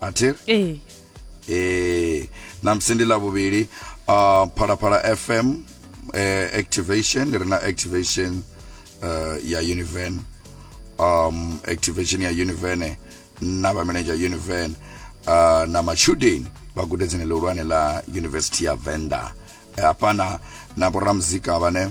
athiri ee ee namusi ndi ḽa vhuvhili uh, phalaphala fm eh, activation ri na activation uh, ya univen um, activation ya univen na vhamenedzha univen uh, na matshudeni vha gudedzini ḽihulwane ḽa university ya venda hafhana na vhoramuzika vhane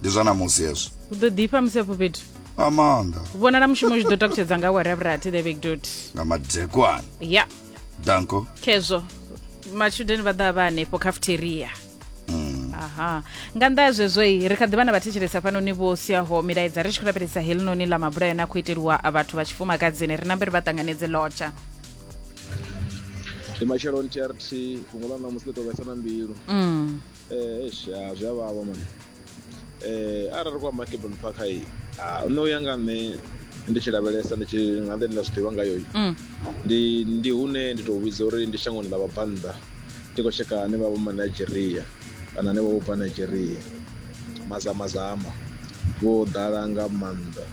ndi zwa namusi hezwo u ḓo ḓifha musi afho fhethu nga maanḓa vhonala mushumo zwi ḓo takutshedza nga awara ya vhurathi the big dot nga madekwana ya danko khezwo matshudeni vha ḓa vha hanefho cafeteria mm. aha nga nnḓa ya zwezwo i ri kha ḓi vha na vhathetshelesi hafhanoni vho siaho milaedza ri tshi khou lavhelesa helinoni ḽa mabula yone a khou iteliwa vhathu vha tshifumakadzini ri nambe ri vha ṱanganedze lotsha ndi matshelo ntrt fhungo ḽa namusi ḽi tovhesa na mbilu mm. Eish ya zwi a vhavha mani um arali ri khou amba caplon park hai nṋe u ya nga nṋe ndi tshi lavhelesa ndi tshi nga nḓe ndi nda zwi ḓivha ngayo mm. ndi ndi hune ndi tou vhidza uri ndi shangoni ḽa vhabvannḓa ndi khou tsheka ane vha vho ma nigeria kana ane vha vho bva nigeria mazamazama vho ḓala nga maanḓa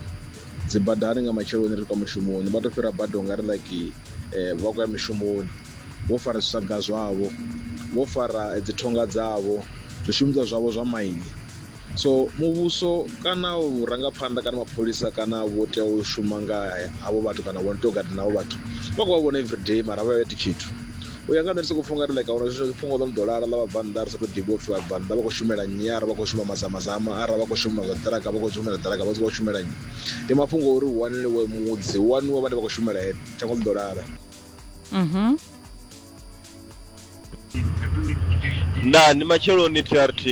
dzi badani nga matsheloni ri kwa mushumoni vha tou fhira bada u nga ri like eh, vha khou ya mishumoni vho fara zwisaga zwavho, vho fara dzithonga dzavho, zwishumiswa zwavho zwa maini. So muvhuso kana vhurangaphanḓa kana mapholisa kana vho tea u shuma nga havho vhathu kana vho tea u gada navho vhathu vha khou vha vhona everyday mara vha iti tshithu u ya nga nṋe ndi soko pfha ungari like ahuna zwithu fhungo ḽo no ḓo lala ḽa vhabvannḓa ri sa tou ḓivha upfhi vhabvannḓa vha khou shumela nnyi ara vha khou shuma mazamazama ara vha khou shuma zwa ṱiraka vha khou shumela ṱiraka vha khou shumela nnyi ndi mafhungo uri hu waniwe mudzi hu waniwe vhane vha khou shumela ene shango ḽi ḓo lala. Mhm. nda ndi matsheloni trt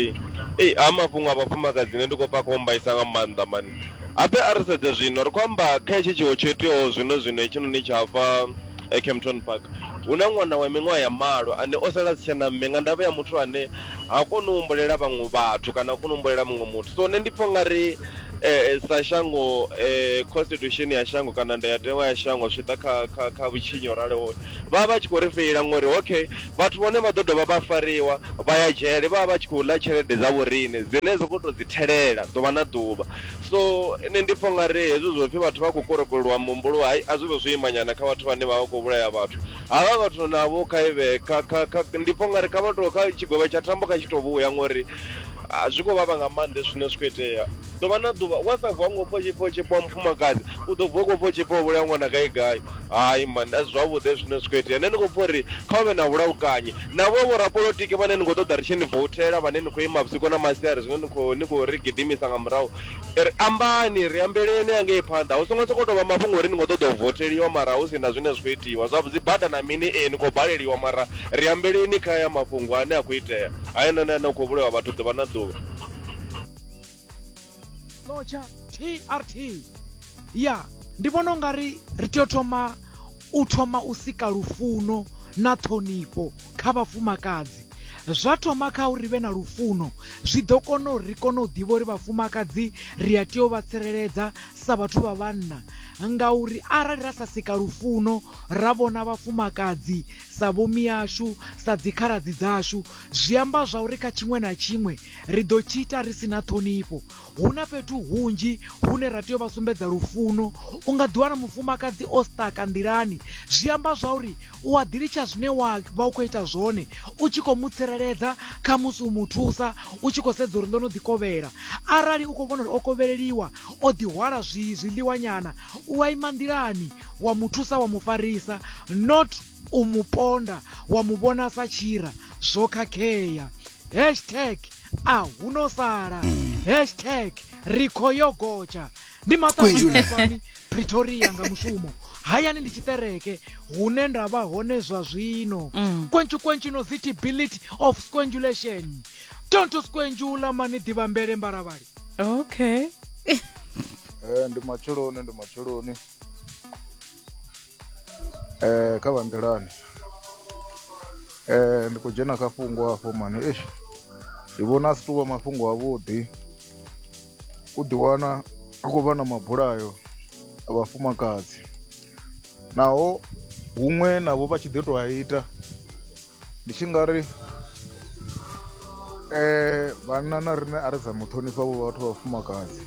ei a mafhungo a vhafumakadzi ne ndi khou pfa kombaisa nga maanḓa mani ape a ri sedze zwino ri khou amba kha hetshi tshiwo tsho iteaho zwino zwino hetshinoni tsha hafha eh, campton park hu na ṅwana wa miṅwaha ya malo ane o sala si tshena mme nga ndavha ya muthu ane ha koni u humbulela vhaṅwe vhathu kana ha koni u humbulela muṅwe muthu so nṋe ndi pfha ungari Ee, sa shango eh, constitution ya shango kana ndayatewa ya shango zwi ḓa kha kha kha vhutshinyi ho raloho vha vha vha tshi khou ri feila ngori okay vhathu vhone vha ḓo dovha vha fariwa vha ya dzhele vha vha vha tshi khou ḽa tshelede dza vhorine dzine dza khou tou dzi thelela ḓuvha na ḓuvha so nṋe ndi pfha nga ri hezwi zwo pfhi vhathu vha khou korokolwa muhumbulo hai a zwi vhe zwo imanyana kha vhathu vhane vha vha khou vhulaya vhathu havha vhathu navho kha ivhe kha kha kha ndi pfha nga ri kha vha tou kha tshigwevho tsha thambo kha tshi tou vhuya ngori A zwi khou vhavha nga maanḓa hezwi zwine zwi khou itea ḓuvha na ḓuvha wa sa vuwa ngo pfha u tshi pfha u tshi pfha wa mufumakadzi u ḓo vuwa u khou pfha u tshi pfha u vhulaya ṅwana gai gai hai mani a si zwavhuḓi hezwi zwine zwi khou itea nṋe ndi khou pfha uri kha hu vhe na vhulaukanye navho vhorapolotiki vhane ni khou ṱoḓa ri tshi ni vouthela vhane ni khou ima vhusiku na masiari zwine ni khou ni khou ri gidimisa nga murahu ri ambani ri ambeleni hangei phanḓa hu songo sokou tou vha mafhungo uri ni khou ṱoḓa u voutheliwa mara hu si na zwine zwi khou itiwa zwa dzibada na mini ee ni khou baleliwa mara ri ambeleni kha haya mafhungo ane a khou itea. Heinoni ane u khou vhulawa vhathu ḓuvha na ḓuvha. Locha TRT. Ya, ndi vhona ungari ri tea u thoma u thoma u sika lufuno na ṱhonifho kha vhafumakadzi. Zwa thoma kha uri ri vhe na lufuno, zwi ḓo kona uri ri kone u ḓivha uri vhafumakadzi ri a tea u vha tsireledza sa vhathu vha vhanna ngauri arali ra sa sika lufuno ra vhona vhafumakadzi sa vhomiashu, sa dzikhaladzi dzashu, zwi amba zwauri kha tshiṅwe na tshiṅwe ri ḓo tshi ita ri si na ṱhonifho. Hu na fhethu hunzhi hune ra tea u vha sumbedza lufuno. U nga ḓiwana mufumakadzi o sṱaka nḓilani, zwi amba zwauri u a ḓi litsha zwine wa vha u khou ita zwone, u tshi khou mu tsireledza, khamusi u mu thusa u tshi khou sedza uri ḽo no ḓi kovhela. Arali u khou vhona uri o kovheleliwa, o ḓi hwala zwi zwiḽiwanyana, u a ima nḓilani wa mu thusa wa mu farisa not u mu ponda wa mu vhona sa tshira zwo khakhea hashtag a hu no sala mm. hashtag ri kho yo gotsha ndi maṱaani pretoria nga mushumo hayani ndi tshiṱereke hune nda vha hone zwa zwino mm. kwentshu kwentshu no zitibility of squangulation don't squangula mani ḓivha mbele mbaravhali okay eh, ndi matsheloni ndi matsheloni Eh kha vha nḓilani eh ndi khou dzhena kha fhungo afho mani eish ndi vhona a si tou vha mafhungo avhuḓi u ḓiwana a khou vha na mabulayo a vhafumakadzi naho huṅwe navho vha tshi ḓi tou a ita ndi tshi nga ri eh vhanna na riṋe a ri dza muṱhonifha vho vhathu vha vhafumakadzi.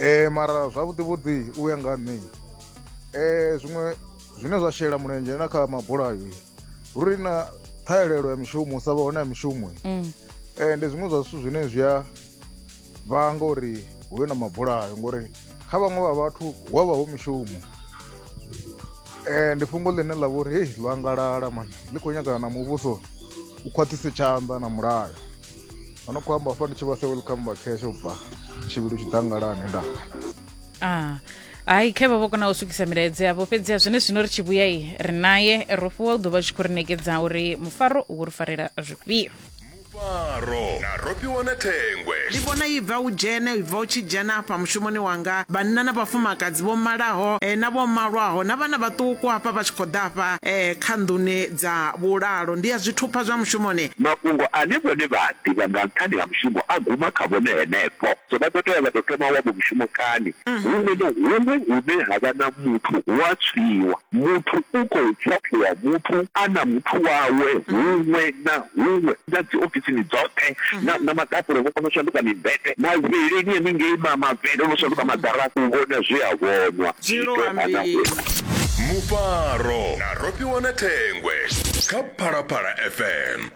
um mara zwavhuḓi vhuḓi u ya nga nṋe um zwiṅwe zwine zwa shela mulenzhe na kha mabulayo uri na ṱhahelelo ya mishumo u sa vha hone ya mishumo um ndi zwiṅwe zwa zwithu zwine zwi a vhanga uri hu vhe na mabulayo ngori kha vhaṅwe vha vhathu hu a vha hu mishumo um ndi fhungo ḽine ḽa vha uri hei ḽo angalala mani ḽi khou nyagana na muvhuso u khwaṱhise tshanḓa na mulayo ano khou amba fani tshi vha se welcome back hesho bva tshivhilu tshidangalani nda ah hayi khe vha vho kona u swikisa milaedza yavho fhedzi a zwone zwino ri tshi vhuya i ri naye ro fhiwa u ḓo vha tshi khou ri nekedza uri mufaro u ri farela zwifhio mufaro na rofhiwa na thengwe ndi vhona i bva u dzhene i bva u tshi dzhena afha mushumoni wanga vhanna na vhafumakadzi vho malaho eh, na vho malwaho na vhana vhaṱuku hafha vha tshi khou ḓa afha eh, kha nḓuni Dza vhulalo ndi ya zwithupha zwa mushumoni. Mafhungo ane vhone vha a ḓivha nga nṱhani ha mushumo a guma kha vhone henefho. So vha ḓo tea vha tou thoma wavho mushumo kani? Huṅwe na huṅwe hune ha vha na muthu hu a tswiwa. Muthu u khou ṱhaṱhuvha muthu a na muthu wawe huṅwe na huṅwe, na dzi ofisini dzoṱhe, na, na maḓakule vho kona u shanduka mimbete, mavheleni haningei ma, mavhele o no shanduka maḓarafu u vhona zwe a vhonwa. Zwiito ha na huṅwe. Mufaro. Ro fhiwa na thengwe kha Phalaphala FM.